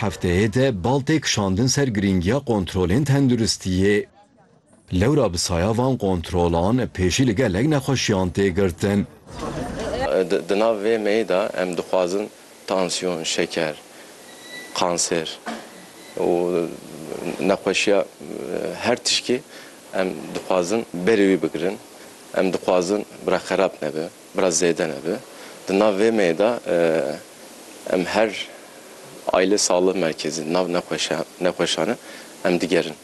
Hefteyê de bal tê kişandin ser girîngiya kontrolên tenduristiyê. Lewra bi saya van kontrolan pêşî li gelek nexweşiyan tê girtin. Di nav vê meyê de em dixwazin tansiyon, şeker, kanser û nexweşiya her tişkî em dixwazin berê wî bigirin. Em dixwazin bi re xerab nebe. Biraz zêde nebe. Di nav vê meyê de em her Aile Sağlığı Merkezi nav nexweşan e em digerin.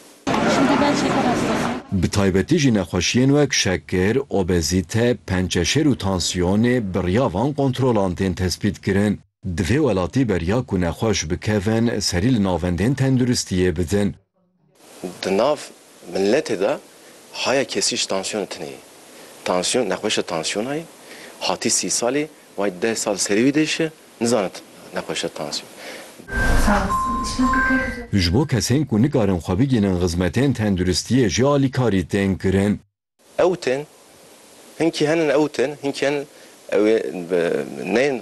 Bi taybetî jî nexweşiyên wek şekir, obezîte, pençeşêr û tansiyonê bi riya van kontrolan tên tespîtkirin. Divê welatî beriya ku nexweş bikevin serî li navendên tenduristiyê bidin. Di nav miletê de haya kesî ji tansiyonê tune ye. Tansiyon nexweşa tansiyona ye. Hatî sî salî wayî deh sal li serî wî de jî nizane nexweşa tansiyonê. Ji bo kesên ku nikarin xwe bigihînin xizmetên tenduristiyê jî alîkarî tên kirin. Ew tên hinkî henin ew tên hinkî henin ew ê neyên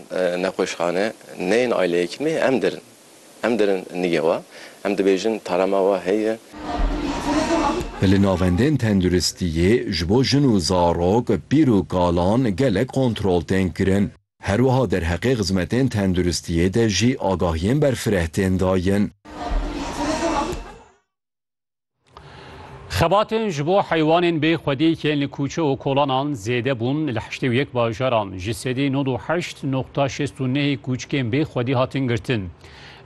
nexweşxane neyên ayleyekî me em derin em derin nige we em dibêjin tarema we heye. Li navendên tenduristiyê ji bo jin û zarok, pîr û kalan gelek kontrol tên kirin. Herwiha derheqê xizmetên tenduristiyê de jî agahiyên berfireh tên dayin. Xebatên ji bo heywanên bê xwedî yên li kûçe û kolanan zêde bûn li heştê û yek bajaran ji sedî nod û heşt noqta şêst û nehê kûçikên bê xwedî hatin girtin.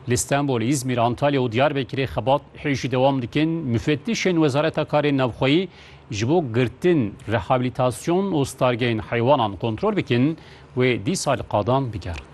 Li Stenbol, Îzmîr, Antalya û Diyarbekirê xebat hêjî dewam dikin. Mufettîşên Wezareta Karên Navxweyî ji bo girtin, rehabilitasyon û stargehên heywanan kontrol bikin, Wê dîsa li qadan bigerin.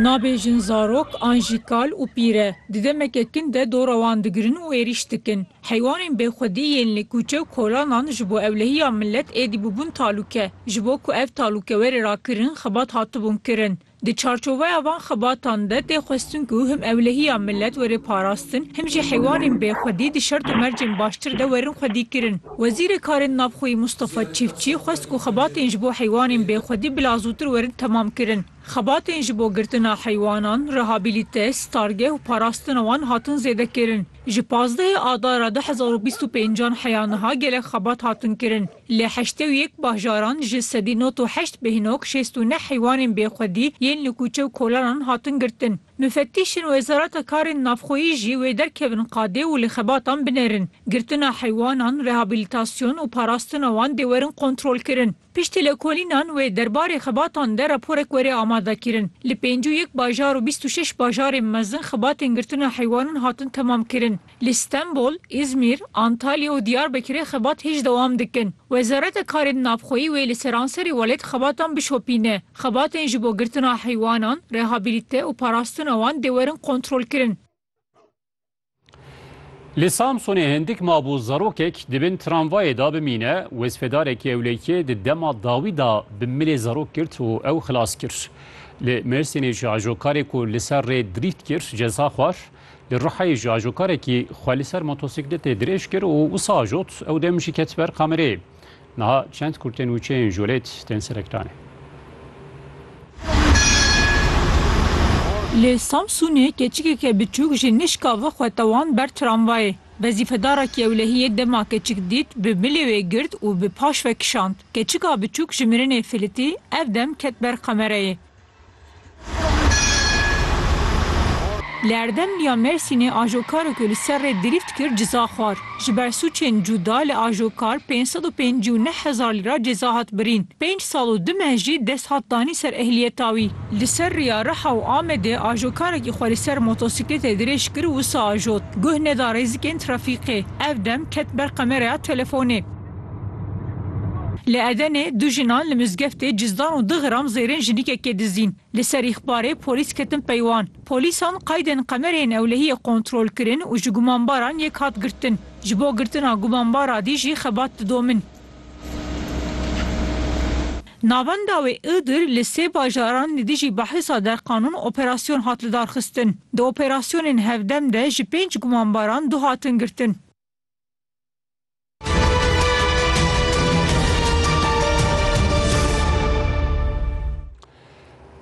Nabêjin zarok an jî kal û pîr e, di demeke kin de dora wan digirin û êrîş dikin. Heywanên bêxwedî yên li kûçe û kolanan ji bo ewlehiya milet êdî bûbûn talûke. Ji bo ku ev talûke were rakirin, xebat hatibûn kirin. Di çarçoveya van xebatan de tê xwestin ku him ewlehiya milet were parastin, him jî heywanên bêxwedî di şert û mercên baştir de werin xwedîkirin. Wezîrê Karên Navxweyî Mustafa Çîfçî xwest ku xebatên ji bo heywanên bêxwedî bila zûtir werin temam kirin. Xebatên ji bo girtina heywanan, rehabilite, stargeh û parastina wan hatin zêdekirin. Ji pazdehê adara du hezar û bîst û pêncan heya niha gelek xebat hatin kirin. Li heştê û yek bajaran ji sedî not û heşt bêhnog şêst û neh heywanên bêxwedî yên li kûçe û kolanan hatin girtin. Mufettîşên Wezareta Karên Navxweyî jî wê derkevin qadê û li xebatan binerin. Girtina heywanan, rehabilitasyon û parastina wan dê werin kontrolkirin. Piştî lekolînan wê derbarê xebatan de raporek were amadekirin. Li pêncî û yek bajar û bîst û şeş bajarên mezin xebatên girtina heywanan hatin temamkirin. Li Stenbol, Îzmîr, Antalya û Diyarbekirê xebat hêj dewam dikin. Wezareta Karên Navxweyî wê li seranserê welêt xebatan bişopîne. Xebatên ji bo girtina heywanan, rehabilite û parastina wan dê werin kontrolkirin. Li Samsunê hindik mab û zarokek di bin tramvayê de bimîne, wezfedarekî ewlekiyê di dema dawî de bi milê zarok girt û ew xilas kir. Li Mêrsînê jî ajokarê ku li ser rê dirîht kir ceza xwar. Li Rihayê jî ajokarekî xwe li ser motosiklêtê dirêj kir û wisa ajot, ew dem jî ket ber kamereyê. Niha çend kurtên û çêyên jolêt tên serektanê. Li Samsûnê keçikeke biçûk ji nişka ve xwe tewand ber tramvayê. Wezîfedarekî ewlehiyê dema keçik dît, bi milê wê girt û bi paş ve kişand. Keçika biçûk ji mirinê filitî, ev dem ket ber kamereyê. Li Erdemlî ya Mêrsînê ajokaro ku li ser rê dirîft kir ciza xwar. Ji ber sûcên cuda li ajokar pênc sed û pêncî û neh hezar lîra ceza hat birîn. Pênc sal û du meh jî dest hat danîn ser ehliyeta wî. Li ser rêya Riha û Amedê ajokarekî xwe li ser motosiklêtê dirêj kir û wisa ajot. Guh neda rêzikên trafîkê. Ev dem ket ber kameraya telefonê. Li Edenê du jinan li mizgeftê cizdan û du gram zêrên jinikekê dizîn. Li ser îxbarê polîs ketin pey wan. Polîsan qeydên qemerê yên ewlehiyê kontrol kirin û ji gumanbaran yek hat girtin. Ji bo girtina gumanbara dî jî xebat didomin. Navenda wê Iğdır li sê bajaran li dijî behisa derqanûn operasyon hat lidarxistin. Di operasyonên hevdem de ji pênc gumanbaran du hatin girtin.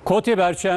Kotê Berçem